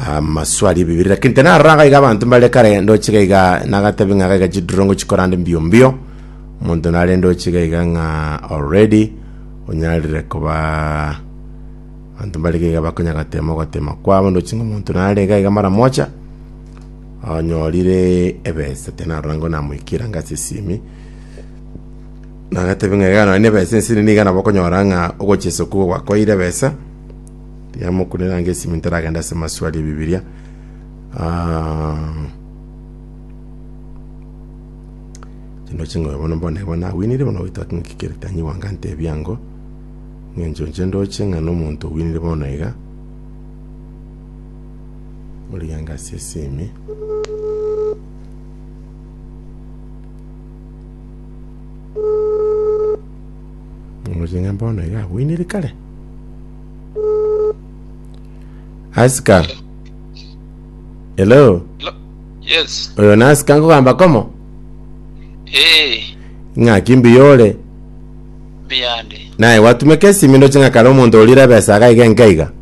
Amasuali ebibere, lakini tinarora iga abanto mbare kare ndoche iga iga nagatebi ng'a iga iga chidurongo chikorande mbio mbio omonto nare ndoche iga iga ng'a already onyarire koba abanto mbare iga iga bakonya gatema ogotema kwabo ndoche ng'a omonto nare iga iga mara mocha onyorire ebesa tinarora ngona moikera ng'a ase esimi nagatebi ng'a iga nonye na ebesa ense nigo iga nabo okonyora ng'a ogochesa okwo gwakoeire ebesa Tiamokunire ange esimi ntaragenda ase maswali ebibiria. Ah, chino chingoyo bono mbone igo nawinire bono goita ngikere tanyi wanga ntebi ango ng'encho nche ndoche ng'a nomonto owinire bono iga ori ange ase esimi Ngoching'a bono iga awinire kare asika hello Lo- Yes. oyo nasika nkogamba komo Eh, ng'aki mbiyore biyande. naye gwatumeka esimi ndoche ng'a kare omonto orire ebesa iga iga enka iga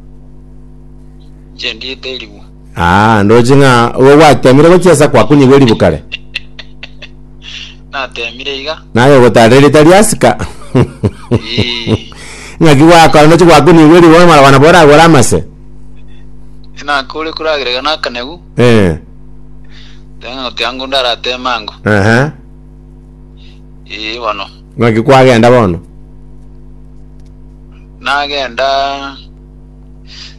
Nche ndiete eriwo. Aa, ndoche ng'a igo gwatemire gochia ase kwakunyigwa eribu kare. Natemire iga. Naye ogotaara erieta ria Asuka. Ii. Ng'aki gwakora ndoche gwakunyigwa eribu bono mara nabo oragore amase. Nakore koragerega nakanegu. Eh. Teng'a oti ango ndarateme ango. Aha. Ii bono. Ng'aki kwagenda bono. Nagenda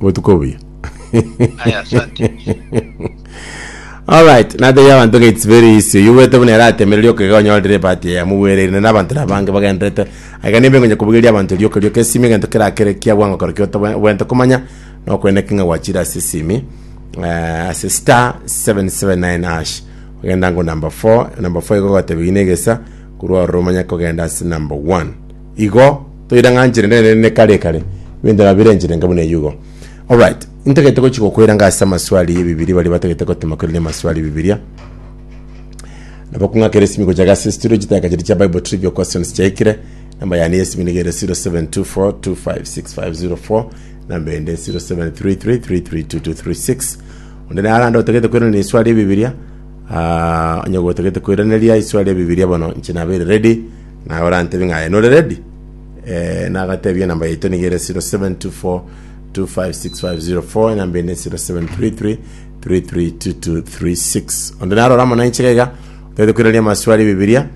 Obotuko obuya. Aye asante. Alright, natebia abanto ng'a it's very easy. Oyo bwete buna eratemere rioka iga onyorire ebahati eye mobwereirane na abanto na abange bagenderete. Aiga nimbe ngonya kobugeria abanto rioka rioka esimi egento kerakere kia bwango kero ki otoba- obwenerete komanya na okoeneka ng'a gwachire ase esimi eh, ase star 779 hash. Ogenda ngo number 4, number 4 igo ogatebia gina egesa korwa ororo omanye kogenda ase number 1. Igo toirang'anchire nere ne kare kare, ebinto nabire enchire enke buna eyio igo. Alright, intagete gochi gokoiranga ase amaswali y'Ebibiria baria batagete gotema koirania amaswali y'Ebibiria. Nabo kong'akera esimi gocha gase studio chitaka chiria chia Bible Trivia Questions chiaikire. Namba yane y'esimi nigo ere 0724256504, namba ende 0733332236. Onde nare ande otagete koirania eswali y'Ebibiria, ah, onye gotagete koiraneria eswali y'Ebibiria bono inche nabeire ready, Naye orantebie ng'a aye nore ready, eh, nagatebie enamba yaito niga ere 0724256504, enamba ende 0733332236. Onde narora amo nainche gaiga, otagete koiraneria amaswali Bibilia,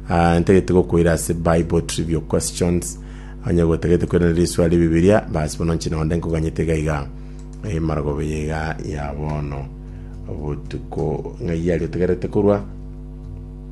ah, ntagete gokoira ase Bible Trivial Questions, onye gotagete koiraneria riswali Bibilia, bas bono inche nonde nkoganyete gaiga emargoba eye iga ya bono obotuko ng'ai aria otegerete korwa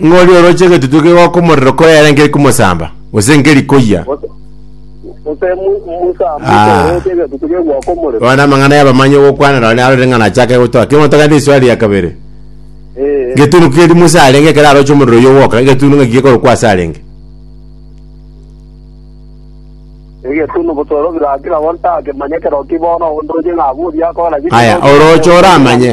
Ng'ori oroche egetutu kegoka omorero koyera nkeri komosamba, gose nkeri koyia. Gose gose mu- musamba Ah. otooroche egetutu gegoka omorero. Bono amang'ana y'abamanyi ogokwana nonye arorire ng'a nachake gotoa. Kera omonto agende risuari ria kabere, Eh, getunu keri Musa arenge ekero aroche omorero oyio ogoka, egetunu ng'aki gekorokwa ase arenge? egetunu botoro birakira bono takemanya ekero ki bono onde oche ng'a abwo oria akogera ki. Aya, oroche oramanye.